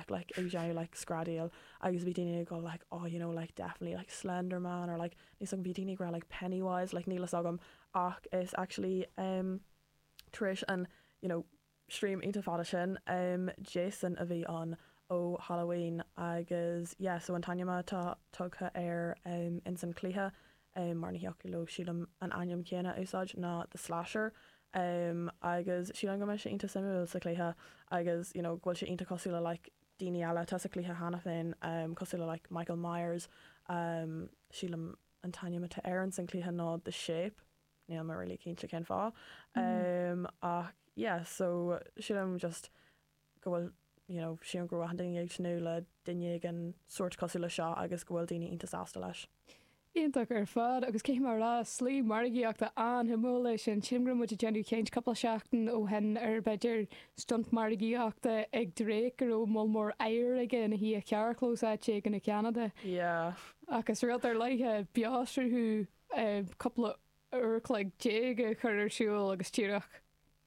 like ag déanamh like screadaíl agus bhí daoine ag dul like oh you know like definitely like slender man or like níl 's agam bhí daoine ag rá like penny wise like níl fhios agam ach is actually um tar éis an you know stream iontach fada sin um Jason a bhí ann ó Halloween agus yeah so an t-ainm atá tugtha air um ins an cluiche é mar ní thiocfadh leo, sílim, an ainm céanna a úsáid ná The Slasher agus sílim go mbeidh sé iontach suimiúil sa chluiche agus you know go bhfuil sé iontach cosúil le like daoine eile atá sa chluiche cheana féin cosúil le like Michael Myers sílim an t-ainm atá air san chluiche ná The Shape, níl mé really cinnte cén fáth ach yeah so sílim just go bhfuil you know sílim go raibh achan duine ag tnúth le duine éigin sórt cosúil le seo agus go bhfuil daoine iontach sásta leis. Iontach ar fad, agus caithfidh mé a rá, slí margaíochta an-shuimiúil é sin. Sílim go raibh muid ag déanamh caint cúpla seachtain ó shin ar, b'fhéidir, stunt margaíochta ag Drake, go raibh moll mór oighir aige ina shuí i gcarrchlós áit éigin i gCeanada. Yeah. Ach is rud ar leith é beoshruthú cúpla uair an chloig déag a chur ar siúl agus díreach.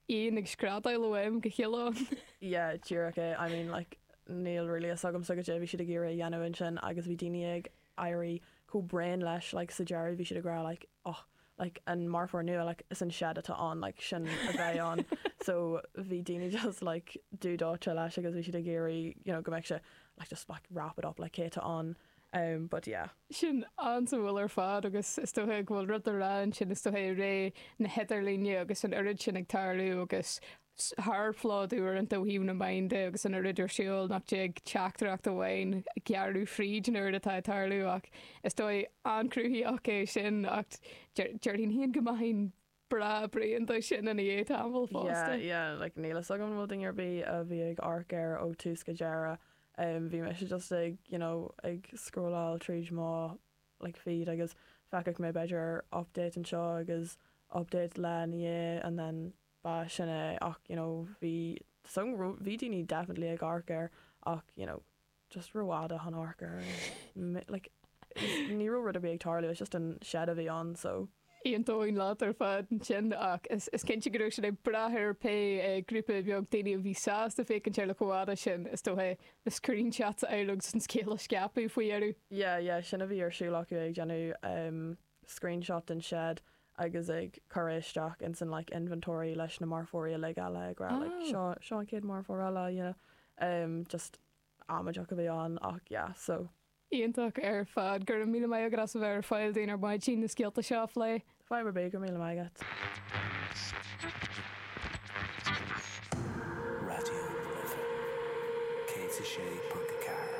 éan ag screadaíl ó am go chéile ann. yeah díreach é, I mean like níl really fhios agamsa goidé a bhí siad ag iarraidh a dhéanamh ansin agus bhí daoine ag éirí chomh bréan leis like sa deireadh bhí siad ag rá like oh like an marfóir nua like is an Shed atá ann like sin a bheidh ann so bhí daoine just like dubh dóite leis agus bhí siad ag iarraidh you know go mbeadh sé like just like wrap it up like cé atá ann em but yeah. Sin an-suimiúil ar fad agus is dóiche go bhfuil rud le rá ansin, is dóiche i ré na hidirlíne agus an oiread sin ag tarlú agus sárphlódú uaireanta ó thaobh na meáin de agus an oiread ar siúl nach dtig teachtaireacht amháin gearradh fríd an oiread atá ag tarlú ach is dóigh an-chruthaitheach é sin ach déarfainn féin go mbeinn breá bréan de sin i ndiaidh tamaill fosta. Yeah, yeah, like níl fhios agam an bhfuil duine ar bith a bhí ag amharc air ó tús go deireadh. Um, bhí mise just ag, you know, ag scrolláil tríd mo like feed agus feicfeadh mé b'fhéidir update anseo agus update lá ina dhiaidh and then ba sin é ach, you know, bhí, bhí daoine definitely ag amharc air ach, you know, just rófhada chun amharc air and like ní raibh rud ar bith ag tarlú, it's just an shed a bhí ann so. Aontóinn leat ar fad ansin ach is cinnte go raibh siad ag brath ar pé grúpa beag daoine a bhí sásta féachaint air le chomh fada sin, is dócha, na screenshots a fháil agus an scéal a scaipeadh faoi dheireadh. Yeah, yeah, sin a bhí ar siúl acu, ag déanamh. screenshot den shed agus ag cur é isteach ins an like inventory leis na marfóirí uilig eile ag rá like seo seo an chéad marfóir eile you know um just amaideach a bhí ann ach yeah so. Iontach ar fad. Go raibh míle maith agat as a bheith ar fail dúinn ar maidin na scéalta seo a phlé. Fadhb ar bith, go raibh míle maith agat. Raidió na Life 106.4.